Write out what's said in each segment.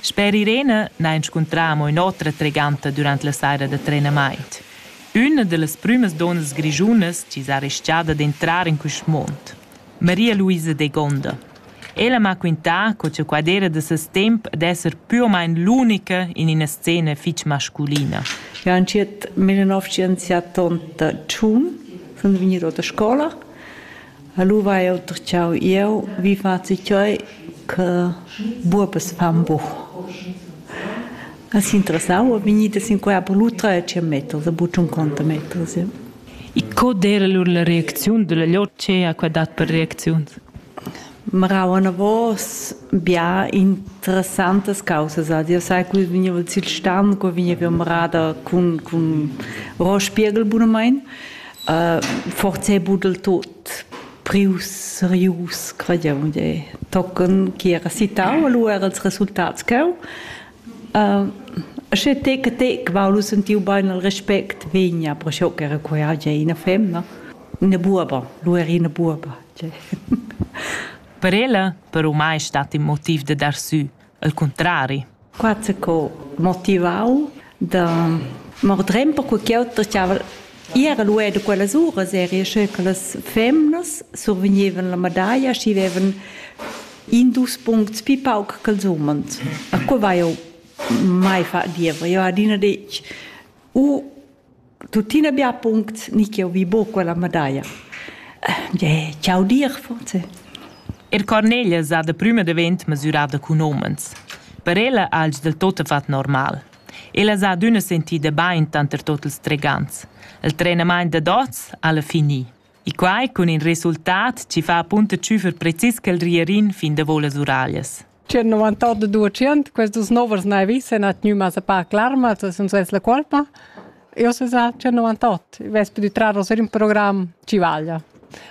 Sper Irene n'ha ins scuntrà amo ün'otra treganta dürant la saira da trenamaint. Üna da las prümas donnas grischunas chi s'ha ris-chada d'entrar in quist muond, Maria Luisa Degonda. Ella m'ha quintà co cha qua d'eira da ses temp d'esser pü o main l'unica in üna scena fich masculina. Eu han tschient, mille novcientos siat otg sun vegnir o da scoula E lu vai jeu tertgau jeu, vi fazzi tgei che buobas fan buc. As interessau è vegnida sin quella per lu tretschen meters, a buc tschunconta meters. Ja. E co d'era lur la reacziun della lor che ha qua dat per reacziuns? Marau anavos bia interessantas causas. Io sai, che vegniva sil stand, che vegniva marada cun, cun Ross Spiegel bunamein. forse budel tot prius serius quadium de tocken chi era citau lu era els resultats cheu Sche te che te qualu sentiu bain al respect vegna pro scho che era quia ge ina femna ina buoba lu era ina buoba per ella per umai stat in motiv de dar sü El cuntrari. Qua co motivau da mordrem perque ch'jeu stava era luedo quellas uras eri sche che las femnas survegnevan la medaglia schi vevan in dus puncts pi pauc ch'els umens. A co vai jau mai fa diever? Eu ha adina detg u tuttina bia puncts ni che vi buca quella medaglia. Eh, ciao dir forse. Il Cornelia sa de prima davent mesurada con omens. Per ella alge del tot fat normal. Ella sa d'una sentida bain tanter tot els tregants. Il trenament de dots alla fini. E quai cun in resultat ci fa punta ciufer precis quel rierin fin de volas uralias. C'è 98% queste nuove navi se na tgnuma sa pa clarma, se sun ses la colpa. Io se sa c'è 98, ves più di trarre ser in programm ci vaglia.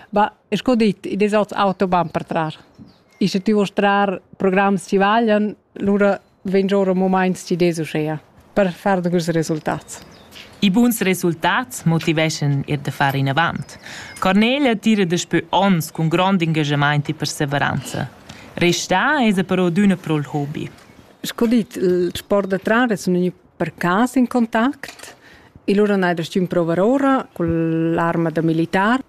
Ma es co dit, i des ots auto van per trar. I se ti vuoi trar programms ci vaglian, lura vegn ora moments ci des uschea. per far degüs resultats. I buns resultats motiveschan eir da far inavant. Cornelia tira daspö ons cun grond ingajamaint e perseveranza. Restà esa però adüna pro'l hobi. Sco dit, il sport da trar es gnü per cas in contact. E lura n'hai restà ün prouvar ora cun l'arma da militar.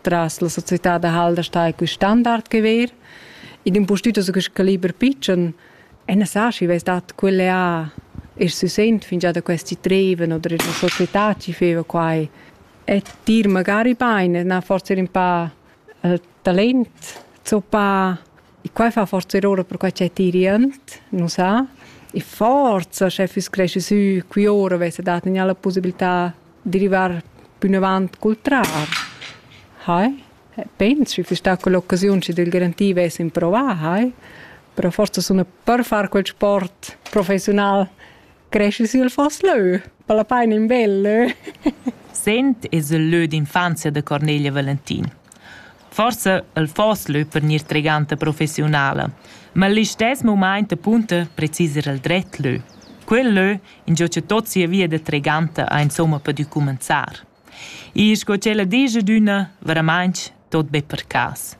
tras la società da Halder sta quel standard che ver. In impustüt so quest caliber pitschen e ne sa schi ves dat quelle a e si sent fin già da questi treven oder la società ci feva quai e dir magari beine na forse un pa uh, talent so pa E quai fa forza ora perquai ch'è tirient, nu sa. E forza, sche füss cresci sü qui ora, vessa dat gnà la pussibilità di rivar pünavant cul trar. Hai? Pens, schi füss stà quell'occasiun, schi del garantir vess improvà, hai? Però forza suna per far quel sport professiunal Cresci sül foss lö, per la paina in bel lö. Sent es il lö d'infanzia da Cornelia Valentin. Forsa il foss lö per gnir treganta professiunala, ma l'istess mumaint apunta precis ir al dret lö. Quel lö ingio cha tot sia via da treganta ha insomma pudü cumanzar. E sco tschella digia dunna, veramaintg tot be per cas.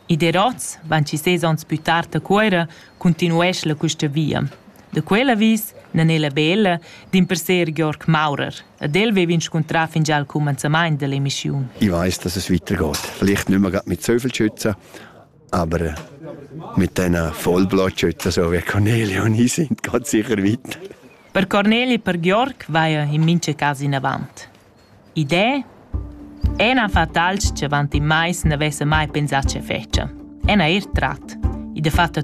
I der oz, van ci ses ons plü tard a Cuera, continuesch la custa via. Da quel avis nan è la bella dimperser Georg Maurer, ed el vevin scontrà fingià al cumanzamaint dell'emissiun. Ich weiß, dass es weitergeht. Vielleicht nicht mehr mit so viel schützen, Aber mit diesen Vollblotschützen, so wie Cornelia und ich, sind ganz sicher weit. Per Cornelia e per Georg vaia in mince cas in avant. Idee? Ena fa tals che avant in mais ne vesse mai pensà ce fece. Ena er trat. I de fatta